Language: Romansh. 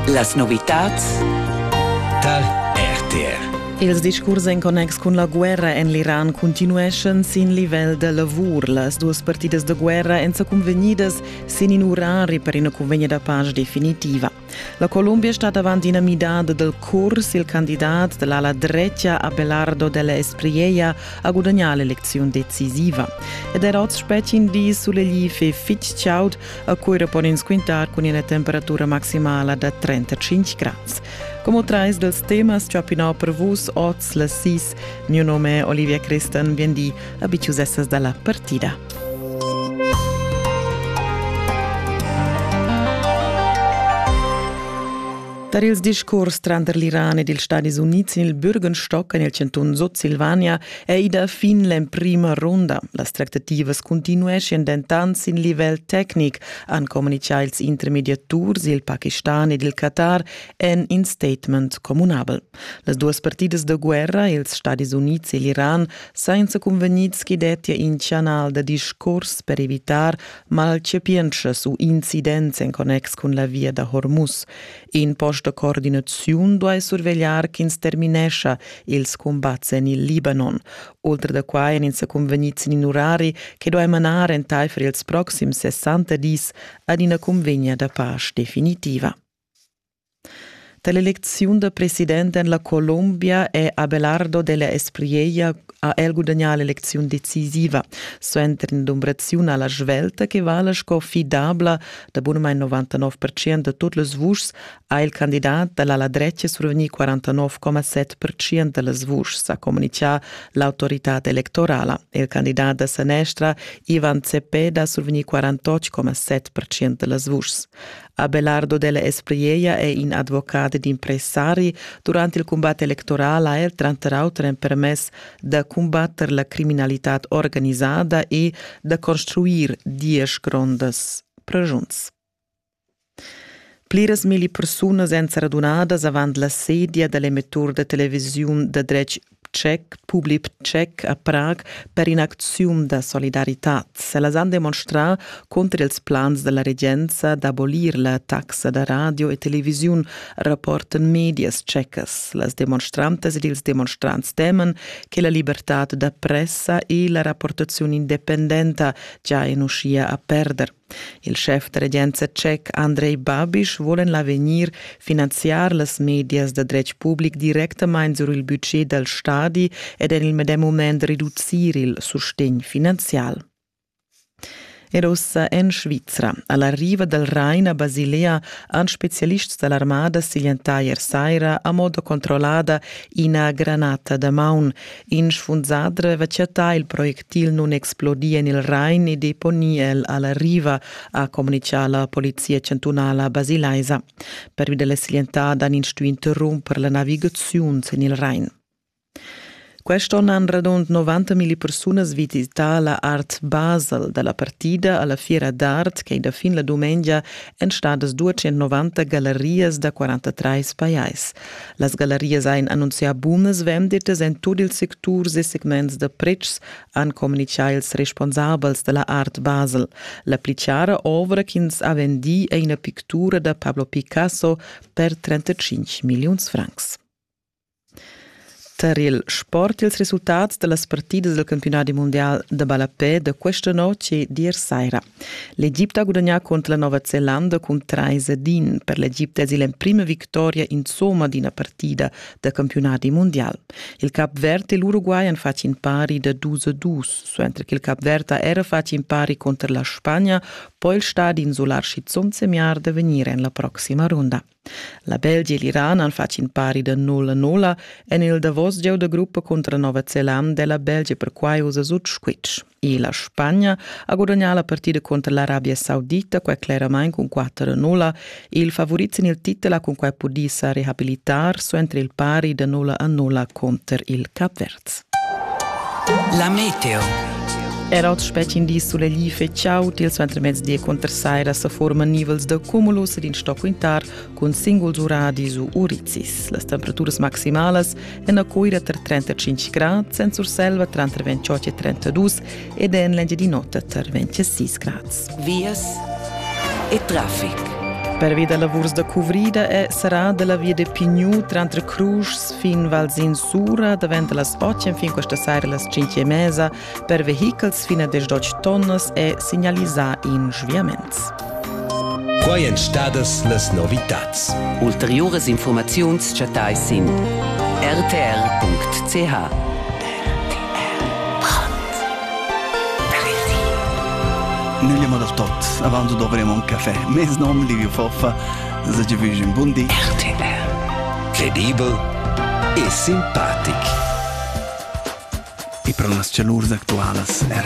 Las novitads tar RTR. Ils discurs en connex cun la guerra en l'Iran continueschan sin livel da lavur. Las duas partidas da guerra èn sa cunvegnidas sin in urari per ina cunvegna da pace definitiva. La Columbia stat avant ina midada del curs. Il candidat dell'ala drecia Abelardo della Espriella ha gudagnà l'elezione decisiva. Ed er oz spettin di sulegli fe fitg chaud a Cuira pon ins quintar cun ina temperatura maximala da 35 grads. Como trais dels temas chapinau per vus oz las sis, mio nome Olivia Christen, bien di, abitiusessas dalla partida. Tar ils discurs tranter l'Iran ed ils Stadis Unids sin il Bürgenstock en il chantun Sutsilvania È ida fin l'emprima runda. Las tractativas continueschien dentant sin livel tecnic, han communitgà ils intermediaturs, il Pakistan ed il Qatar en in statement communabel. Las duas partidas da guerra, ils Stadis Unids e l'Iran, senza convegnids che dettia in canal da discurs per evitar malchapientschas u incidents en connex cun la via da Hormuz. In post da coordinaziun duai survegliar ch'ins terminescha ils cumbats en il Libanon. Ultra da quai èn ins sa cunvegnids in urari che duai manar entaifer ils proxims 60 dis ad ina cunvegna da pace definitiva. Dall'eleziun da president en la Colombia è Abelardo della Espriella ha el gudagnà l'elecziun decisiva suenter in'dumbraziun alla svelta che vala sco fidabla da bunamain 99 percent da tut las vuschs ha il candidat dall'ala dretga survegnì 49,7 percent da las vuschs, ha communitgà l'autoritad electorala. Il candidat da sanestra Ivan Cepeda ha survegnì 48,7 percent da las vuschs. Abelardo della Espriella è in advocat ed impressari durant il cumbat electoral ha er tranter auter empermess da cumbatter la criminalitad organizada e da construir diesch grondas pregiuns. Pliras milli persunas èn saradunadas avant la sedia da l'emettur da televisiun da dretg tschec, public tschec a Prag per in'acziun da solidaritad. Ellas han demonstrà cunter ils plans della regenza d'abolir la taxa da radio e televisiun, rapportan medias tschecas. Las demonstrantas ed ils demonstrants teman che la libertad da pressa e la rapportaziun independenta già en uschia a perder. Il schef da regenza tschec Andrei Babiš vuol en l'avegnir finanziar las medias da dretg public directamain sur il budget dal stadi ed en il medem mument reducir il sustegn finanzial. Er ussa en Svizra. A la riva dal Rain a Basilea han spezialists da l'armada siglientà ier saira a modo controllada ina granata da maun. In sfunsadre va chattà il projectil nunexplodì en il Rain e deponì el a la riva, ha communitgà la polizia chantunala basilaisa. Pervi da la slientada han ins stuì interrumper la navigaziun sin il Rain. Quest'onn han radund 90.000 persunas visità la Art Basel da la partida alla Fiera d'art che da fin la dumengia èn stadas 290 gallerias da 43 pajais. Las gallarias ein annunzià bunas venditas en tut ils secturs e segments da pretschs, han communitgà ils responsabels dalla Art Basel. La pli chiara ovra ch'ins ha vendì è ina pictura da Pablo Picasso per 35 milliuns francs. Tar il sport ils resultats da las partidas del campionat mondial da ballapè da questa notg è dir saira. L'Egipte ha gudagnà contro la Nova Zelanda cun 3 ad 1. Per l'Egipte es il emprima victoria insomma d'ina partida da campionadi mundial. Il Cap Verd e l'Uruguay han fatg in pari da 2 a 2, suenter che il Cap Verd ha era fatg in pari contro la Spagna, poi il stadi insular schizunt semiar da vegnir en la proxima runda. La Belgia e l'Iran han fatg in pari da nulla nulla en il davos gieu da gruppa cunter Nova Zelanda e la Belgia perquai usa sut squitsch. E la Spagna ha gudagnà la partida contro l'Arabia Saudita, quai cleramain cun 4-0. Il favorit sin il titel ha cunquai pudì sa rehabilitar suenter il pari da 0-0 contro il Cap Verd. La meteo. Era oz spetgin di sulegli feciau til suentermezdi conter saira sa forma nivels da cumulus ed in stoc quintar cun singuls uradis u urizis. Las temperaturas maximalas en a Coira tar 35 grad, Sensur Selva tranter 28 e 32 ed en l'Engiadin'Ota tar 26 grads. Vias e traffic. Pervi da lavurs da cuvrida è serrà da la via de Pignou tranter Cruges fin Valsin Sura davent da las 8 fin questa sera las 5 e mesa per vehichels fin a 18 tonnas è signalisà in sviaments. Quai èn stadas las novitads. Ulteriuras infurmaziuns chattais sin rtr.ch. Nöglia ma da tot, avanto dovremo un caffè. Mes nom Livio Foffa, se ci vige un buon dì. RTR. Credibel e simpatic. E per las cialurs actualas, er